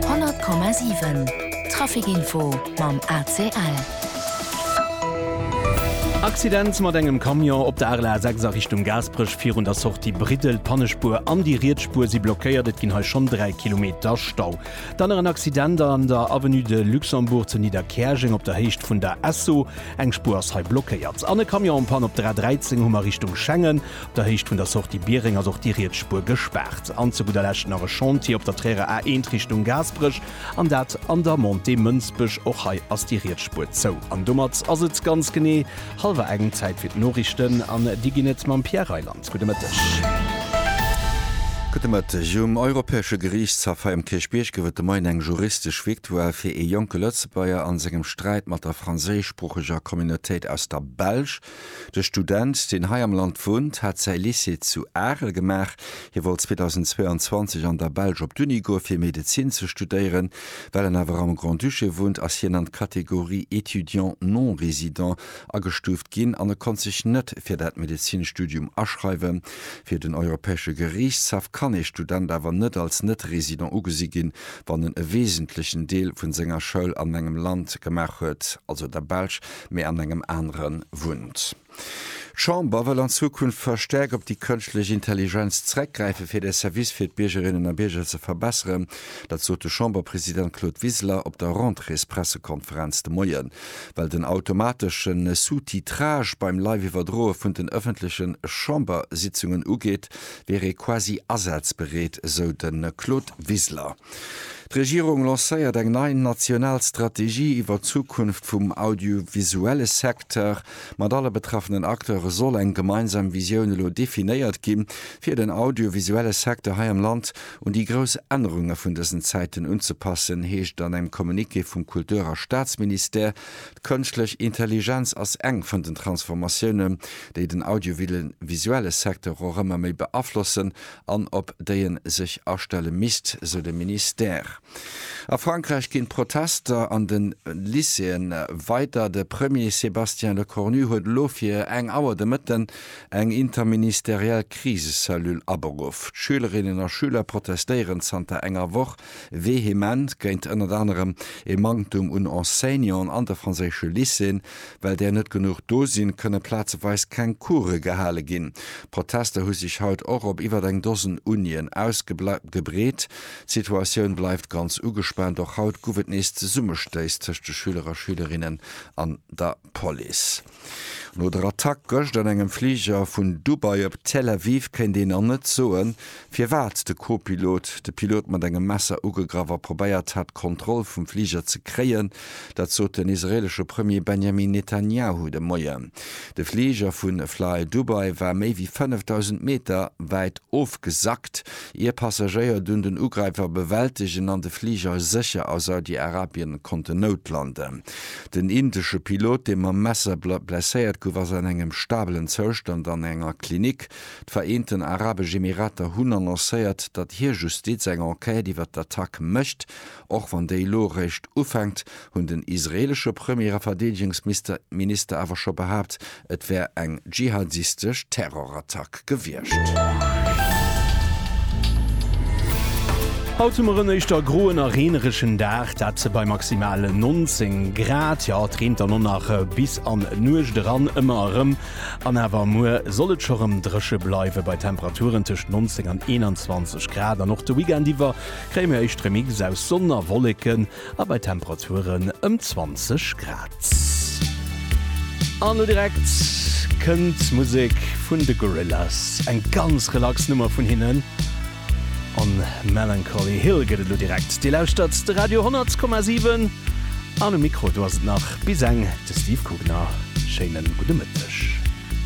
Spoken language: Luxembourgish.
100,7 Traficinfo mam ACL. Accident mat engem Camion op der Arel A6 a Richtung Gaasperech virun der Sortie Briddel. D'Pannespuer an déi riets Spuer si blockéiert. Et ginn hei schonn 3 Kilometer Stau. Dann nach en Accident an der Avenue de Luxembourg zu Nidderkäerjeng op der Héicht vun der Esso. Eng Spuer ass hei blockéiert. An e Camion en Panne op der A13, Hummer Richtung Schengen. der Héicht vun der Sortie Biereng ass och déi riets Spuer gespaart. An zu gudder Lescht nach e Chantier op der Trierer A 1 Richtung Gaasperech, an dat an der Montée Mënsbech. Och hei ass déi riets Spuer zou. An domat ass et ganz genee hallwer eng. Zäit fir d'Noriichten, an déi ginn et mam Pierre Reyland. Gudde Mëtteg. Gudde Mëtteg. Um Europäesche Geriichtshaff hei um Kierchbierg gouf et de Moien eng juristesch Victoire fir ee jonke Lëtzebuerger a sengem Sträit mat der franséischsproocheger Communautéit aus der Belsch. De Student, deen hei am Land wunnt, hat säi Lycée zu Arel gemaach. Hie wollt 2022 an der Belsch op d'Uni goe fir Medezin ze studéieren. Well en awer am Grand-Duché wunnt, ass hien an d'Kategorie étudiant non résident agestuuft ginn an e konnt sech net fir dat Medezinstudium aschreiwen. Fir den Europäesche Geriichtshaff kann ee Student awer net als Net-Résident ugesi ginn, wann en e wesentlechen Deel vun senger Schoul an engem Land gemaach huet, also der Belsch, mee an engem anere wunnt. D'Chamber wëll an Zukunft verstäerkt op déi kënschtlech Intelligenz zereckgräifen, fir de Service fir d'Biergerinnen a Bierger ze verbesseren. Dat sot de Chamberpresident Claude Wiseler op der Rentréespressekonferenz de Moie well den automatesche Sous-titrage beim Live-Iwwerdroe vun den ëffentleche Chambersitzungen ugeet, wier ee quasi asazbereet, esou de Claude Wiseler. D'Regierung lancéiert eng nei national Strategie iwwer d'Zukunft vum audiovisuelle Secteur. Mat alle betraffenen Acteure soll eng gemeinsam Visioun elo definéiert ginn, fir den audiovisuelle Secteur hei am Land un déi grouss Ännerunge vun dësen Zäiten unzepassen, heescht et an engem Communiqué vum Kultur a Staatsministère. D'Kënschtlech Intelligenz ass eng vun den Transformatiounen, déi den audiovisuelle Secteur och ëmmer méi beaflossen an op déi en sech astelle misst, sou de Ministère. A Frankräich ginn d'Protester an de Lycéeë weider. De Premier Sébastien Lecornu huet elo fir eng Auer de Mëtten eng interministeriell Krisecellule aberuff. D'Schülerinnen a Schüler protestéieren zanter enger Woch Vehement géint ënnert anerem ee Manktum un Enseignanten an de franséische Lycéeën. Well där net genuch do sinn, kënne plazeweis keng Coure gehale ginn. D'Protester hu sech haut och op iwwert eng Dosen Unien ausgebreet. D'Situatioun bleift ganz ugespaant. Och haut guff et nees Zesummestéiss tëscht de Schüler a Schülerinnen an der. d'Police. No der Attack gëscht an engem Fliger vun Dubai op Tel Aviv kéint een nach net soen, firwat de Co-Pilot de Pilot mat engem Messer ugegraff a probéiert hat, d'Kontroll vum Fliger ze kréien. Dat sot den israeelesche Premier Benjamin Netanjahu de Moien. De Fliger vu flydubai war méi wéi 5.000 Meter wäit ofgesackt, ier d'Passagéier dunn den Ugräifer bewältegen an de Fliger sécher a Saudi-Arabien konnten noutlanden. Den indesche Pilot, dee mam Messer blesséiert gouf, ass an engem stabelen Zoustand an enger Klinik. D'Vereenten Arabesch Emirater hunn annoncéiert, datt hir Justiz eng Enquête iwwer d'Attack mécht, och wann déi elo eréischt ufänkt, hunn den israeelesche Premier a Verdeedegungsminister awer scho behaapt, Et wär eng dschihadistesch Terrorattack gewiescht. Haut hu mer en éischter groen a reeneregen Dag, dat bei maximal 19 Grad. Jo, et reent dann och nach bis an d'Nuecht eran ëmmer erëm. An awer muer soll et scho rëm dréche bleiwe bei Temperaturen tëscht 19 an 21 Grad. An och de Weekend iwwer kréie mir éischt Remixë aus Sonn a Wolleken. a bei Temperaturen ëm 20 Grad. An lo direkt kënnt d'Musek vun de Gorillaz, eng ganz relax Nummer vun hinnen, On Melancholy Hill gëtt et lo direkt. Dir lauschtert de Radio 10,7 an um Mikro do ass et nach bis eng de Steve Kugner. Schéinen gudde Mëtteg.